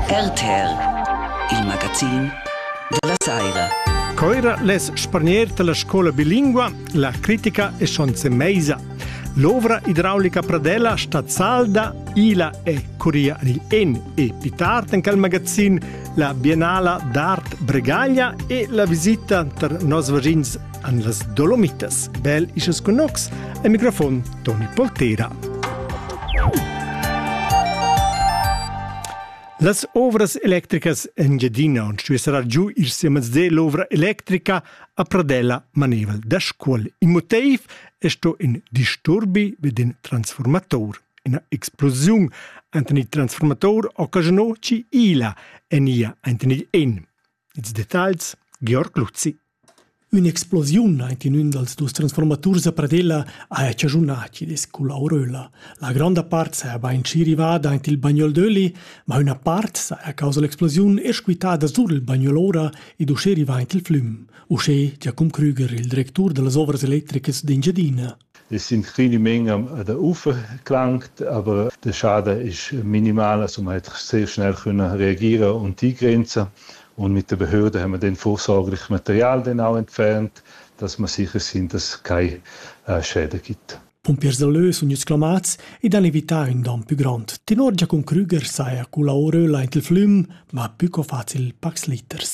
RTL, il magazin della saira. Coira les spargner della scuola bilingua, la critica e schonze meisa. L'ovra idraulica Pradella sta salda, ila e curia il en e pitart in quel magazin la Biennala d'Art Bregaglia e la visita tar nos vagins an las Dolomitas, bel isas connox, e microfon Toni Poltera. Las ovras electricas Engiadina und Svizzera giu ir siemens de l'ovra electrica a Pradella maneval da scuol. Il motiv è sto in disturbi vid in transformator. Ina explosiun enten il transformator occasionò ci ila en ia enten il en. Ils detagls Georg Luzzi Ün'explosiun aint in ün dals dus transfuormaturs a Pradella haja chaschunà chi'd culla Auröla. La gronda part saja bainschi rivada aint il bagnol d'öli, ma üna part saja causa l'explosiun esch quittada sur il bagnol ora ed uschè rivà aint il flüm, uschè Giacum Krüger, il directur da las Ovras electricas d'Engiadina. e sin Trinimen der Ufer klangt, aber der Schade ist minimal, also man hat sehr schnell können reagieren und die Grenze. Und mit der Behörde haben wir den vorsorglichen Material dann auch entfernt, dass wir sicher sind, dass es keine äh, Schäden gibt. Pum Piersaleu sun exclamats ed han evità ün don pü grond. Tenor Giacum Krüger saja cula oröla int il flüm, ma pü co facil pacs liters.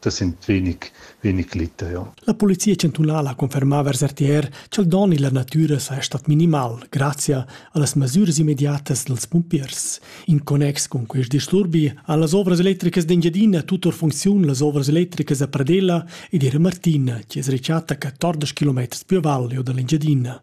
Tessint vegnic, vegnic liteo. La polizia chantunala conferma vers RTR ch'el don illa natüra saja stat minimal grazia a las masüras immediatas dals pumpiers. In connex cun quist disturbi han las ovras electricas d'Engiadina tutor funcziun las ovras electricas a Pradella ed era Martina, chi es rechatta 14 km più a valle o dall'Engiadina.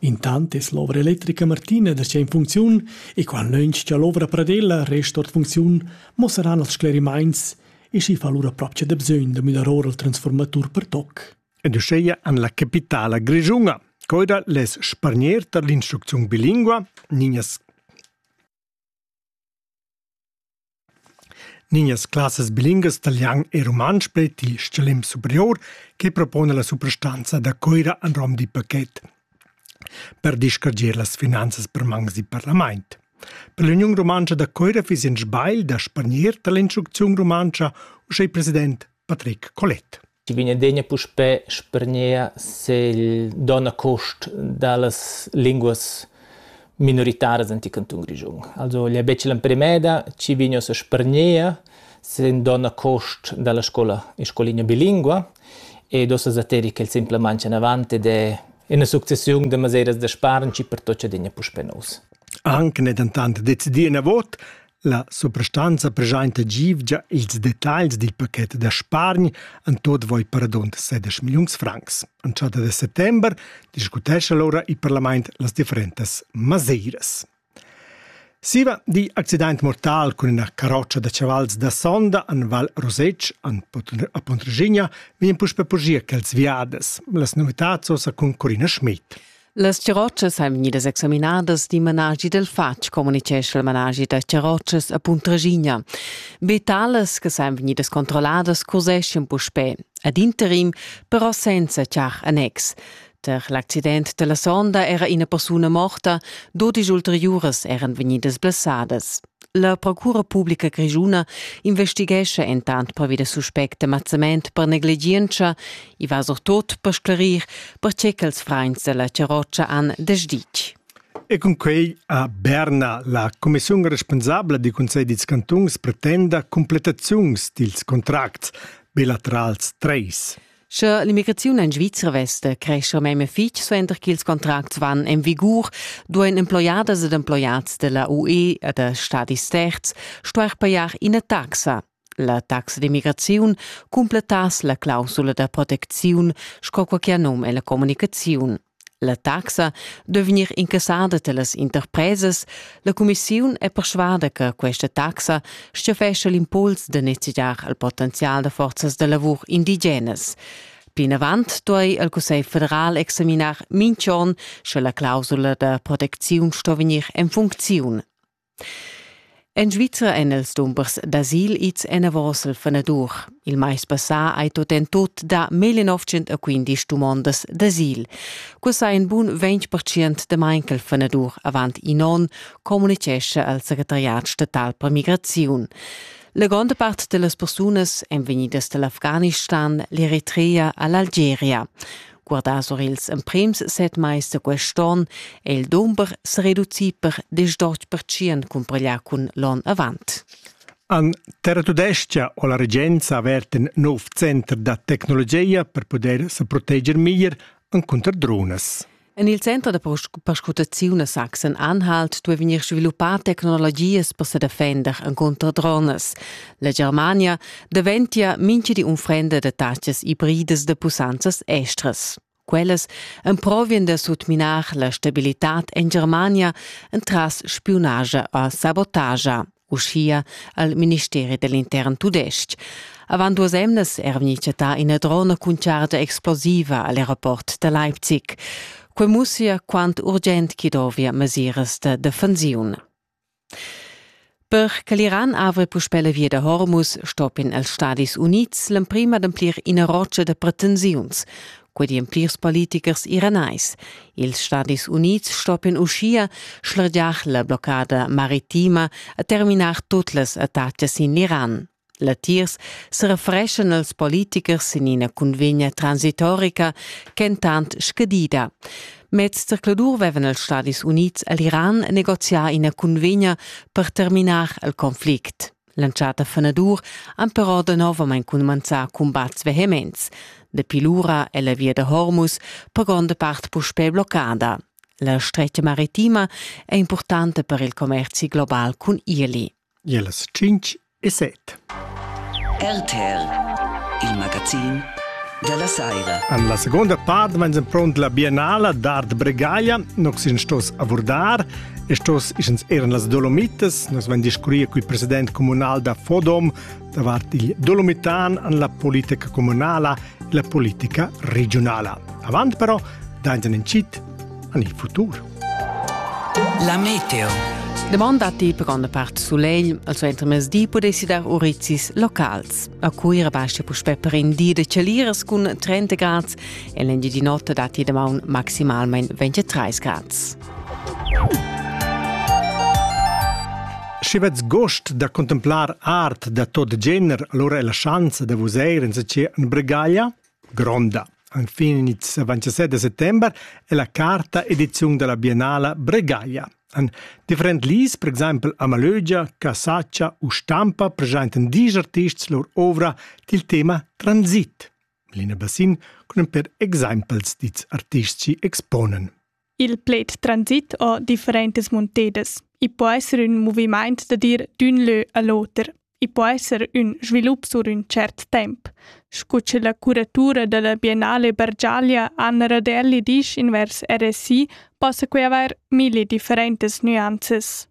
Intant es l'ovra electrica Martina darcheu in funcziun e quantnögn cha l'ovra pradella resta ord funcziun muossaran els sclerimaints e schi fa lura propcha da bsögn da müdar our il transfuormatur per toc. Ed uschea an la capitala grischuna coida les spargner tar l'instrucziun bilingua Ninas Nignas classas bilingas talian e rumantsch pleti stgalim superior che propona la suprastanza da Cuira en rom d'in paket per discargir las finanzas per mangs d'in parlament. Per l'Uniun rumantscha da Cuira fiss in sbagl da spargnir tar l'instrucziun rumantscha uschè il president Patrick Collet. chi vegnedigna puspè spargner segl donna cost da las linguas minoritaras ant il cantun Grischun. Also el è betg l'emprimeda chi vegn a spargner sen donna cost da la scola in scoligna bilingua ed ossa sateri ch'el simplamaing anavant ed è ina successiun da maseras da spargn chi pertocca digna puspè nous. Anche ne dentant decidì ina vot La suprastanza preschainta givgia ils detagls dil paket da spargn en tot voi per adont 16 milliuns francs. Entschatta de settember discutescha l'ora il parlament las differentas maseiras. Siva di accident mortal cun ina caroccia da chavals da sonda en Val Rosec, a Pontregigna, vien puspe pogia quels viades. Las novitads osa cun Corina Schmidt. Las charrotschas ein vegnidas examinadas d'in managi dal fatg, communitgescha il managi da charrotschas a Puntraschigna. Be talas che san vegnidas controlladas cuseschien puspè. Ad interim però senza char annex. Per l'accident della sonda era ina persuna morta, dodisch ulteriuras eran vegnidas blessadas. La Procura publica grischuna investighescha entant pervi da suspect de mazzament per negligientscha. I va surtot per sclarir perche ch'els frains della charrotscha han desditg. E cun quei ha Berna, la commissiun responsabla di Conselj dils cantuns, pretenda completaziuns dils contracts bilaterals 3. Sche l'immigraziun en Svizra vesta crescha meme fitg suenter ch'ils contracts van en vigur, duain emploiadas ed emploiads della UE e da stadis terz stuair pajar ina taxa. La taxa d'immigraziun cumplettass la clausula da protecziun sco quai che ha num en la communicaziun. La taxa duei vegnir incassada dallas interpresas. La cumissiun è perschuada che questa taxa stiofescha l'impuls da nezegiar al potenzial da forzas da lavur indigenas. Plinavant duei il Cussegl federal examinar mintg'onn, sche la clausula da protecziun sto vegnir en funcziun. En Svizra èn els dumbers d'asil ids enavos al fanadur. Il mais passà hai tot en tut dà mille novcent a quindisch dumondas d'asil. Questa è in bun 20% de main ch'al fanadur avant in on, communicescha al secretariat statal per migraziun. La gronda part de las persunas èn vegnidas dall'Afghanistan, l'Eritrea a l'Algeria. Guardà sur ils emprims set mais da quest onn è il dumber sa reducì per disdotg percient cumpareglià cun l'onn avant. An Terra Tudescha ho la regenza avert in nov center da tecnologia per poder sa proteger meglier cunter drones. En il center da perscrutaziun a Sachsen-Anhalt duai vegnir sviluppà tecnologias per sa defender cunter drones. La Germania daventia mincha di unfrenda da tachas ibridas da pussanzas estras. Quellas emprovien da sutminar la stabilitad en Germania entras spiunagia o sabotagia, uschia al Ministeri dell'intern tudestg. Avant duas emnas era vegni chattà ina drona cun chargia explosiva al aeroport da Leipzig. Quei mussia quant urgent chi dovia mesiras da defensiun. Per che l'Iran avri puspè la via da Hormuz stoppien els Stadis Unids l'emprim ademplir ina rotscha da pretensiuns, quei di en plirs politichers iranais. Ils Stadis Unids stoppien uschia schlargiar la bloccada maritima e terminar tut las attacas sin l'Iran. Latiers serefreschan els politichers sin ina cunvegna transitorica ch'entant scadida. Mez zercladur vevan els Stadis Unids e l'Iran negoziar ina cunvegna per terminar il conflict. L'entschatta fenadur han però danovamain cumanzà cumbats vehements. Dapi lura è la via da Hormuz per gronda part puspè bloccada. La stretga maritima è importanta per il commerzi global cun Irli. Gia las tschintg e set. RTL, il magazin dalla saira. An la seconda part meins en pront la biennala d'art Bregaglia, nox in stos avurdar, e stos ischens eran las Dolomites, nox vein discurria cul president comunal da Fodom davart il dolomitan an la politica comunala e la politica regionala. Avant però, dainten in cit, an il futur. La meteo. Demanda ti per grande parte solegl, also entro mesdi potessi dar urizis locals. A Cuira basta puspè per in di de celiras cun 30 grad e l'engi di notte dati da maun maximalmente 23 grad. Sche vets gost da contemplar art da tot gener, allora è la chance da vos eir in sa ce in Bregaglia? Gronda. Enfin ils 27 da settember è la quarta ediziun della Biennala Bregaglia. An different lis, per exempel a Malögia, Casaccia u Stampa, presenten dis artists lor ovra til tema transit. Lina Bassin con per exempels dits artists ci exponen. Il pled transit ha differentas muntedas. I po esser ün movimaint da dir d'ün lö a l'oter. I po esser ün svilup sur ün tschert temp, scu che la curatura da la Biennale Bargiaglia Anna Radelli disch invers RSI, possa quai avair milli differentas nüanzas.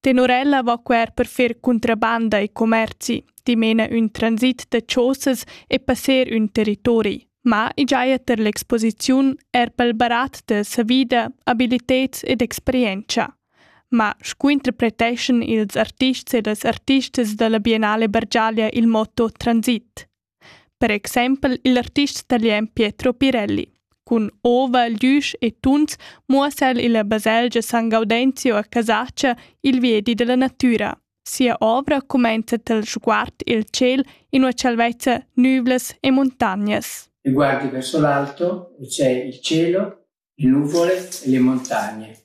Tenor ella va quer per fer contrabanda e commerzi, dimena ün transit da chosas e passer ün territori. Ma i giaja ter l'exposiziun er pel barat da savida, abiliteds ed experientscha. Ma scu interpreteschan ils artists e las artistas da la Biennale Bargiaglia il motto transit? Per exempel il artist talian Pietro Pirelli. Cun ova, glüsch e tuns muossa el illa baselgia San Gaudenzio a Casaccia il viedi della natüra. Sia ovra cumenza tel sguard il ciel in ua salvezza nüvlas e montagnas. E guardi verso l'alto e c'è il cielo, le nuvole e le montagne.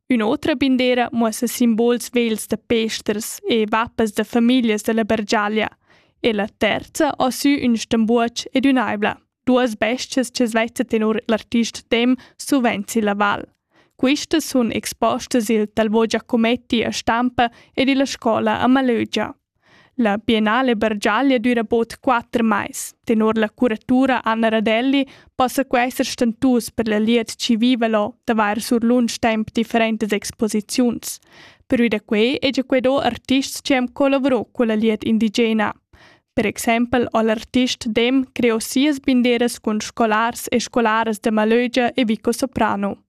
Ün'otra bindera muossa simbols vegls da pesters e vappas da famiglias dalla Bergiaglia e la terza ha sü ün stambuoch ed ün'aibla, duas bestias che svezza tenor l'artist dem suvent silla val. Quistas sun expostas i'l Talvo Giacometti a Stampa ed illa scola a Malögia. La Biennale Bargiaglia düra bod quatter mais. Tenor la curatura Anna Radelli possa quai esser stentus per la glieud chi viva là d'avair sur lunsch temp differentas exposiziuns. Pervi da quai hegia quai do artists chi han collavurò culla glieud indigena. Per exempel ho l'artist Dem creò sias binderas cun scolars e scolaras da Malögia e Vico Soprano.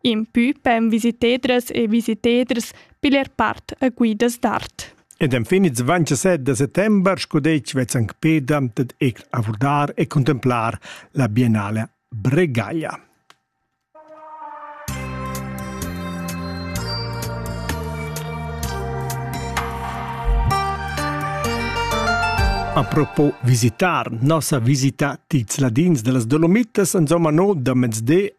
Impü pem visitedras e visiteders piler part a guidas d'art. Ed enfin ils 27 de settembre scudetg vezzan peda dad ec avurdar e contemplar la biennale Bregaglia. A propos visitar, nossa visita dils ladins de las Dolomitas, insomma no da mezde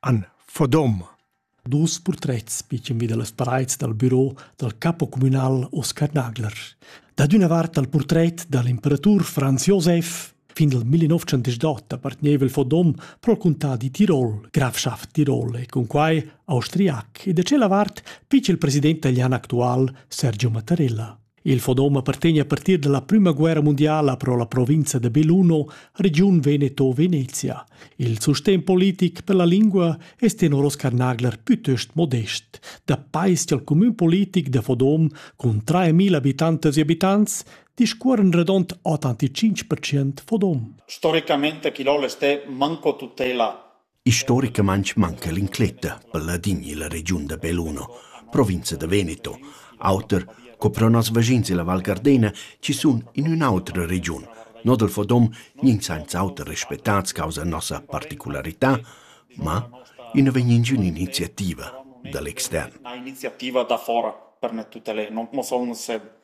Anne Fodom. Dus purtrets pitschen vi da las paraids dal büro dal capo cumünal Oskar Nagler. Da d'üna vart dal purtret da l'imperatur Franz Josef fin dal 1908 appartegneva il Fodom pro'l contà di Tirol, grafschaft Tirol e cun quai austriac e da tschella vart pitsch il president italian actual Sergio Mattarella. Il fonom appartegna a partir dalla prüma guerra mundiala pro la provinza de Belluno, regiun Veneto-Venezia. Il sustegn politic per la lingua es tenor Oscar Nagler pütöst modest. Da pais al cumün politic de Fodom cun 3.000 abitantes e abitants discuorren redond 85% Fodom. Storicamente chi l'ho l'esté manco tutela Istoricamaing manca l'incletta pel ladin illa regiun da Belluno, provinza da Veneto, auter co pro noss vaschins illa Val Gardena chi sun in ün'otra regiun. No dal fodom gnins sainza auter respettats causa nossa particularità, ma i nu vegn ingün iniziativa da l'extern. Iniziativa da fora per me tutte le, non, non so come se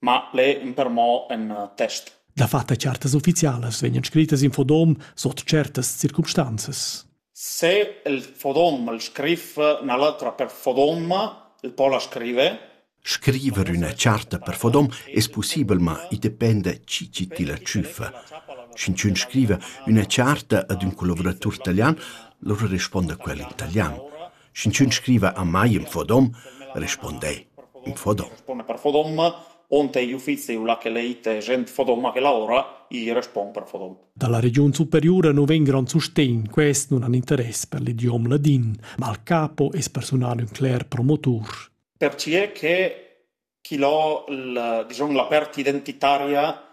ma leu in per mo in test. Dafatta certas ufficialas vegnan scrittas in fodom sot certas circumstanzas. Se il fodom il scrif na l'atra per fodoma, il po la scrive. Scriver üna charta per fodom es pussibel, ma i dependa chi chi ti la tschüfa. Sch'ün scriva üna charta ad ün collaboratur talian, lura responda quel in talian. Sch'inchün scriva a mai ün fodom, rispond'ei: ün fodom. Responde per fodom. Onte gli uffizi o là che leite gent fodoma che lavora, gli respon per fodom. Dalla regiun superiura nu vegn grand sustegn, quest non han interess per l'idiom ladin, ma al capo es personal ün cler promotur. Per ce che chi l'ho la dizun la part identitaria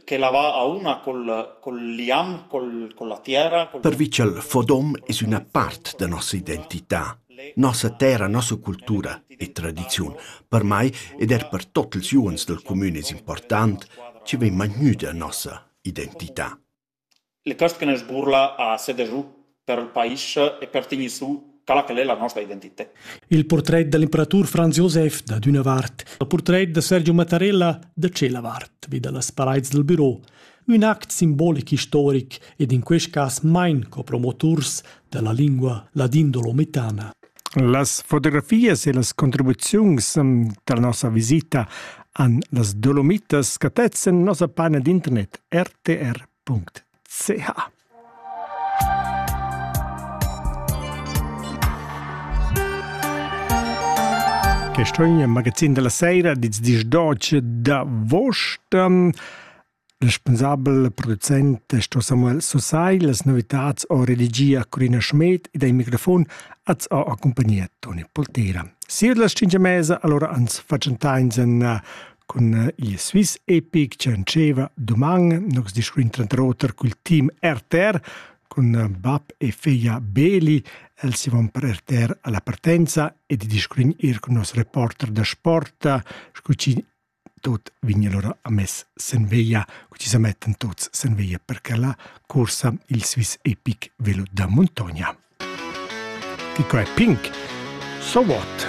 ch'ella va auna col col liam col colla tiera col Per Vitschel Fodom es üna part da nossa identità, nossa terra, nossa cultura e tradiziun. Per mai ed er per tot ils uors dal cumün es important chi vegn magnüda nossa identità. Le cösche ne sburla a seder giù per ël pais e per tegnir su quella ch'el es la nosta identità. Il purtret da l'imperatur Franz Josef dad üna vart, il purtret da Sergio Mattarella da tschella vart vi da las paraids dal büro. Ün act simbolic istoric ed in quest cas main co promoturs da la lingua ladindolomitana. Las fotografias e las contribuziuns da la nossa visita han las Dolomitas scatets en nossa pagina d'internet rtr.ch. Questo è il magazin della sera di 12 d'avost. Respunsabel e producent è sto Samuel Susai. Las novitads ho redigia Corina Schmed ed ai microfon az ho accumpagnia Toni Poltera. Siu las cinque mesa allora ans facentainsen eh, cun eh, il Swiss Epic che anceva doman nox discuin tranter oter col team RTR con eh, bab e figlia Beli els si van per RTR alla partenza e di discuin ir con nos reporter da sport scucin Tut vegn allura amess sen veglia, cu ti sa mettan tuts sen veglia per che là cursa il Swiss epic velo da muntogna. Chi qua è pink? So what?